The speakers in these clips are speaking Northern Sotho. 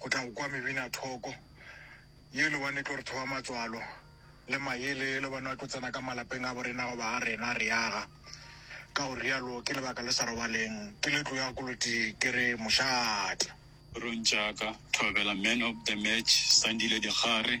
go tla go kwa mebinathoko yelo bane tlo re thoba matswalo le mayele yelo bane ba tlo tsena ka malapeng a borena goba a rena re yaga ka go rialo ke lebaka le sa robaleng ke le tlo ya koloti ke re mošate Rontšaka Thobela man of the match Sandile Dikgare.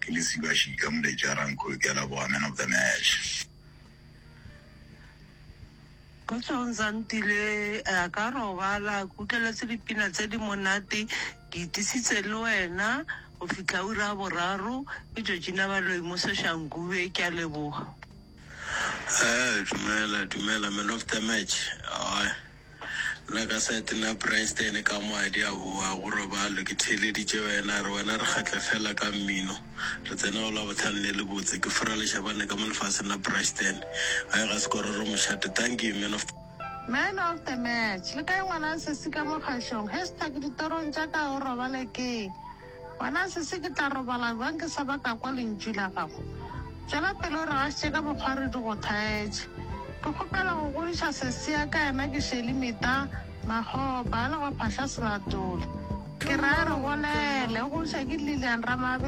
Ke le siba šika moletši a Ranko ke a laboga man of the match. Kgotsong Zandile, a ka robala ke utlweletse dipina tse di monate, ke itisitse le wena go fihla ura ya boraro, ke Georgina Baloyi mo Soshanguve, ke a leboga. Dumela dumela man of the match. Nna ka side la Bryston ka mo a di a boa go robalo ke theeleditše wena a re wena re kgatla fela ka mmino re tsena go la bohlano ne le botse ke fura lešabane ka mo lefaseng la Bryston a ega sekororo mošate thank you man of Man of the match, le kae ngwana sesi ka mo kgašong, hashtag ditorong tša ka o robale ke. Wena sese, ke tla robala bjang ke sa ba ka kwa lentšu la gago? Tšwela pele o re gašitše ka mokgwa re di go thaetše. Ke kgopela go godiša sese ya ka, yena ke Shelly Mita Makgopa, a lego Phahla Selatole. Ke ra re, Bolele, o godiša ke Lillian Ramabe.